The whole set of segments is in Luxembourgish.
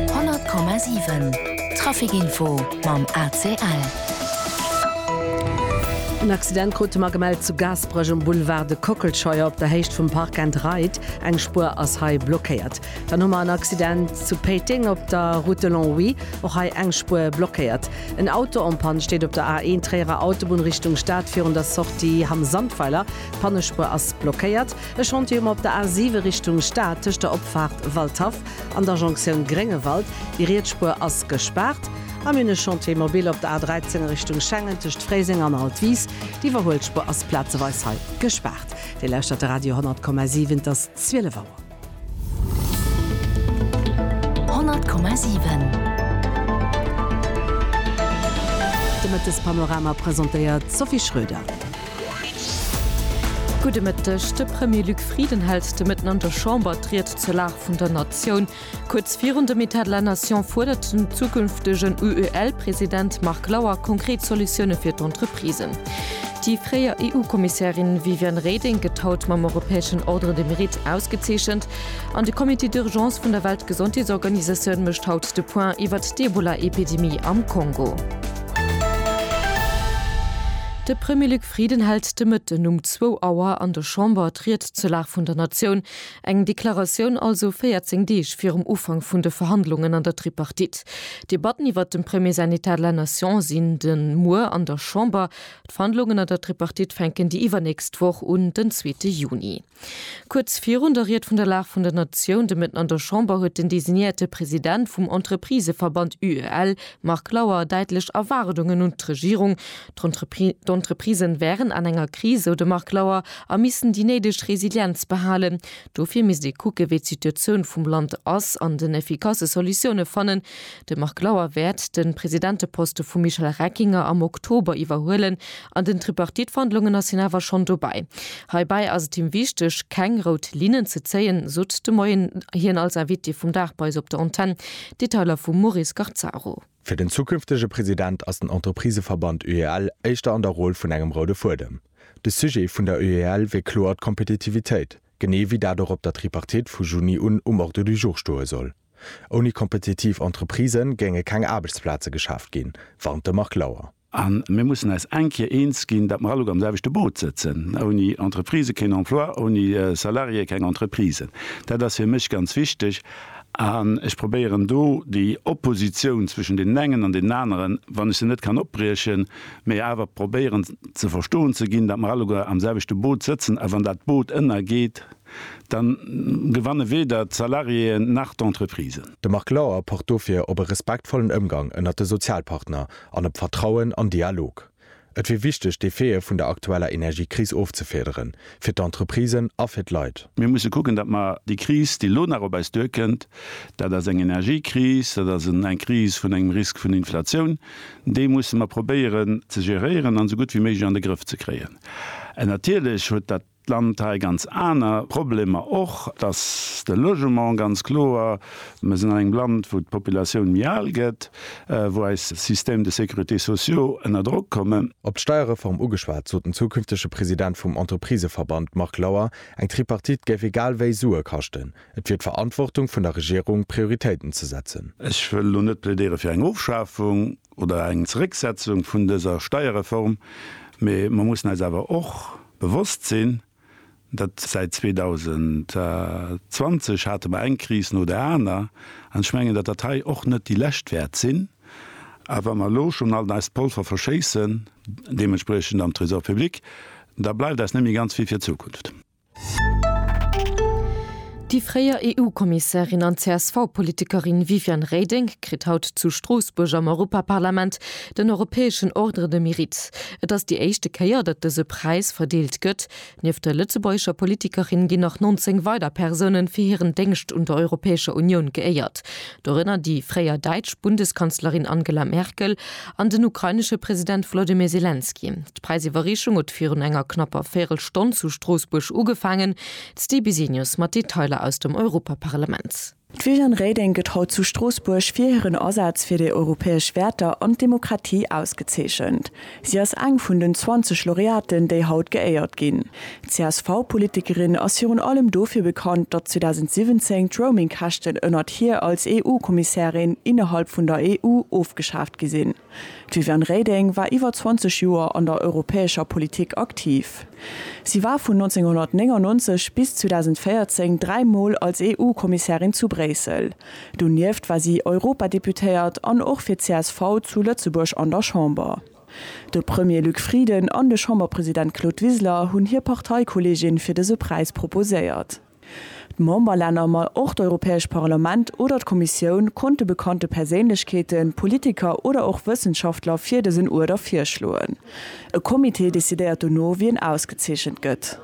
100,7 Trafic Info mam ACL. En Accident krute mer gemellt zu Gaasperech um Boulevard de Kockelscheuer op der Héicht vum Park and Ride. Eng Spuer ass hei blockéiert. Dann hu mer en Accident zu Péiteng op der Route de Longwy. Och hei eng Spuer blockéiert. En Auto en panne steet op der A1 Tréierer Autobunn Richtung Stad virun der Sortie Hamm-Sandweiler. D'Pannespuer ass blockéiert. E Chantier um op der A 7 Richtung Stad tëscht der Opfaart Waldhaff an der Jonktioun Gréngewald. Déi riets Spuer ass gespaart. A mir hunn e Chantier mobil op der A 13 a Richtung Schengen tëscht Fréiseng an Altwis. Déi iwwerhuelt Spuer ass plazeweis hei gespaart. Dir lauschtert de Radio 10,7, et ass 12 Auer. 10,7 De Mëttespanorama presentéiert d'Sophie Schröder. Gudde Mëtteg. De Premier Luc Frieden hält de Mëtten an der Chamber d'Ried zur Lag vun der Natioun. Kuerz virun dem Etat de la Nation fuerdert den zukünftegen UEL-President Marc Lauer konkret Solutioune fir d'Entreprisen. Déi fréier EU-Kommissärin Viviane Reding gëtt haut mam europäeschen Ordre de Mérite ausgezeechent. An de Comité d'urgence vun der Weltgesondheetsorganisatioun mécht haut de Point iwwert d'Ebola-Epidemie am Kongo. De Premier Luc Frieden hält de Mëtten um zwou Auer an der Chamber d'Ried zur Lag vun der Natioun. Eng Deklaratioun also 14 Deeg virum Ufank vun de Verhandlungen an der Tripartite. D'Debatten iwwert dem Premier säin Etat de la Nation sinn de muer an der Chamber. D'Verhandlungen an der Tripartite fänken déi iwwernächst Woch un, den zweete Juni. Kuerz virun der Ried vun der Lag vun der Natioun de Mëtten an der Chamber huet den designéierte President vum Entrepriseverband UEL, Marc Lauer, däitlech Erwaardungen un d'Regierung, d'Entreprisen wären an enger Kris, sou de Marc Lauer, a missten déi néideg Resilienz behalen. Dofir misst ee kucken, wéi d'Situatioun vum Land ass an den effikasse Solutioune fannen. De Marc Lauer wäert de Presidenteposte vum Michel Reckinger am Oktober iwwerhuelen An den Tripartite-Verhandlungen ass hien awer schonn dobäi. Heibäi ass et him wichteg, keng rout Linnen ze zéien, sot de Moien hien als Invité vum Dag bei eis op der Antenn. Detailer vum Maurice Scarzaro. Fir den zukünftege President ass den Entrepriseverband UEL éischter an der Roll vun engem roude Fuedem. De Sujet vun der UEL wier kloer d'Kompetitivitéit, genee wéi dat och op der Tripartite vu Juni un um Ordre du jour stoe soll. Ouni kompetitiv Entreprisë géinge keng Aarbechtsplaze geschaaft ginn, warnt de Marc Lauer. A mir mussen eis eng Kéier eens ginn, datt mer alleguer am selwechte Boot sëtzen, Ouni Entreprisë keen Emploi, ouni Salariéë keng Entreprisen. Dat ass fir mech ganz wichteg. An ech probéieren do déi Oppositioun zwëschen deenen engen an deenen aneren, wann ech se net kann opbriechen, mä awer probéieren ze verstoen ze ginn, datt mer alleguer am selwechte Boot sëtzen. A wann dat Boot ënnergeet, da gewanne weder d'Salariéeën nach d'Entreprisen. De Marc Lauer pocht dofir op e respektvollen Ëmgang ënnert de Sozialpartner an op Vertrauen an Dialog. Et wier wichteg, d'Effete vun der aktueller Energiekris ofzefederen, fir d'Entreprisen a fir d'Leit. Mir musse kucken, datt mer déi Kris, déi elo nach op eis duerkënnt, dat ass eng Energiekris, dat ass eng Kris vun engem Risk vun Inflatioun, déi musse mer probéieren ze geréieren an esou gutt wéi méiglech an de Grëff ze kréien. Natierlech huet dat d'Land hei ganz aner Problemer och, dass de Logement ganz kloer, mir sinn an engem Land, wou d'Populatioun méi al gëtt, wou eis Systèmes de sécurité sociaux ënner Drock kommen. Op d'Steierreform ugeschwat, sot den zukünftege President vum Entrepriseverband Marc Lauer, eng Tripartite géif egal wéi Sue kaschten. Et wier d'Verantwortung vun der Regierung, Prioritéiten ze setzen. Ech wëll elo net plädéiere fir eng Ofschafung oder eng Zerécksetzung vun dëser Steierreform, mee mer mussen eis awer och, Bewosst sinn, datt säit 2020 hate mer eng Kris no der aner, an ech mengen, datt dat hei och net déi lescht wäert sinn. A wa mer elo schonn alt eist Polver verschéissen, deementspriechend am Trésor public, da bleift eis net méi ganz vill fir d'Zukunft. Déi fréier EU-Kommissärin an CSV-Politikerin Viviane Reding kritt haut zu Stroossbuerg am Europaparlament den europäeschen Ordre de Mérite. Et ass déi éischte Kéier, datt dëse Präis verdeelt gëtt. Nieft der lëtzebuergescher Politikerin ginn nach 19 weider Persounen fir hiren Déngscht un der Europäescher Unioun geéiert. Dorënner déi fréier däitsch Bundeskanzlerin Angela Merkel an den ukrainesche President Volodymyr Selenskyj. D'Präisiwwerreechung huet virun enger knapper Véirelstonn zu Stroossbuerg ugefaangen. D'Sti Bisenius mat Detailer aus dem Europaparlament. D'Viviane Reding gëtt haut zu Stroossbuerg fir hiren Asaz fir déi europäesch Wäerter an d'Demokratie ausgezeechent. Si ass eng vun den 20 Laureaten, déi haut geéiert ginn. D'CSV-Politikerin ass virun allem dofir bekannt, datt 2017 d'Roaming-Käschten ënnert hir als EU-Kommissärin innerhalb vun der EU ofgeschaaft gi sinn. D'Viviane Reding war iwwer 20 Joer an der europäescher Politik aktiv. Si war vun 1999 bis 2014 dräi Mol als EU-Kommissärin zu Bréissel. Donieft war si Europadeputéiert an och fir csv zu Lëtzebuerg an der Chamber. De Premier Luc Frieden an de Chamberpresident Claude Wiseler hunn hir Parteikolleegin fir dëse Präis proposéiert. D'Memberlänner, ma och d'Europäesch Parlament oder d'Kommissioun konnte bekannte Perséinlechkeeten, Politiker oder och Wëssenschaftler fir dësen Uerder virschloen. E Comité decidéiert dono wien ausgezeechent gëtt.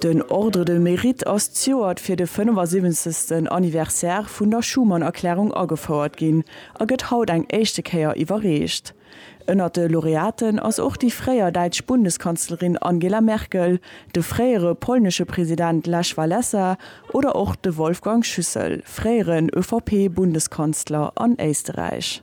Den Ordre de Mérite ass d'Joert fir de 75. Anniversaire vun der Schuman-Erklärung agefouert ginn a gëtt haut eng éischte Kéier iwwerreecht. Ënnert de Laureaten ass och déi fréier däitsch Bundeskanzlerin Angela Merkel, de fréiere polnesche President Lech Walesa oder och de Wolfgang Schüssel, fréieren ÖVP-Bundeskanzler an Éisteräich.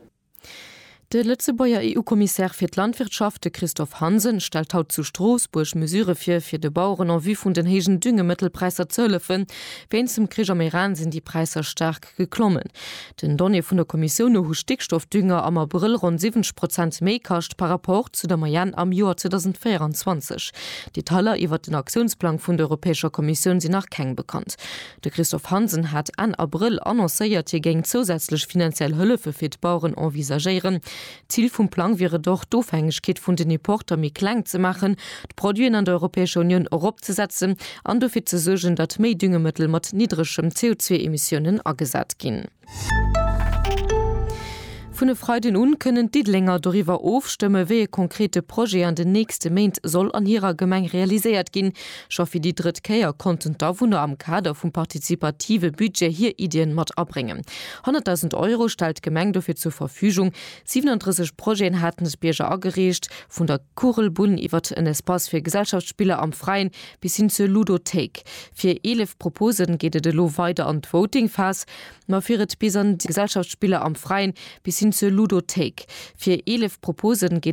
De Lëtzebuerger EU-Kommissär fir d'Landwirtschaft, de Christophe Hansen, stellt haut zu Stroossbuerg Mesurë vir, fir de Baueren en vue vun den héijen Düngemëttelpräisser ze hëllefen. Wéinst dem Krich am Iran sinn déi Präisser staark staark geklommen. Den Donnéeë vun der Kommissioun no hu Stickstoffdünger am Abrëll ronn 70 Prozent méi kascht par rapport zu der Moyenne am Joer 2024. Detailer iwwert den Aktiounsplang vun der Europäescher Kommissioun sinn nach keng bekannt. De Christophe Hansen hat Enn Abrëll annoncéiert, hie géing zousätzlech finanziell Hëllefe fir d'Baueren envisagéieren. D'Zil vum Plang wier et och, d'Ofhängegkeet vun den Importer méi kleng ze maachen, d'Produiten an der Europäescher Unioun eropzesetzen an dofir ze suergen, datt méi Düngemëttel mat niddregem CO2-Emissiounen agesat ginn. Vun e Freiden un kënnen d'Diddelenger doriwwer ofstëmme wéi e konkrete Projet an den nächste Méint soll an hirer Gemeng realiséiert ginn. Scho fir déi drëtt Kéier konnten d'Awunner am Kader vum partizipative Budget hir Iddien mat abréngen. 100.000 Euro stellt d'Gemeng dofir zur Verfügung. 37 Projeten haten d'Bierger agereecht, vun der Kugelbunn iwwert en Espace fir Gesellschaftsspiller am Freien bis hin zur Ludothéik. Fir 11 Propose geet et elo weider an d'Voting-Phas. Ma fir et bis an d'Gesellschaftsspiller am Freien bis hin zur Ludothéik. Fir 11 Propose geet.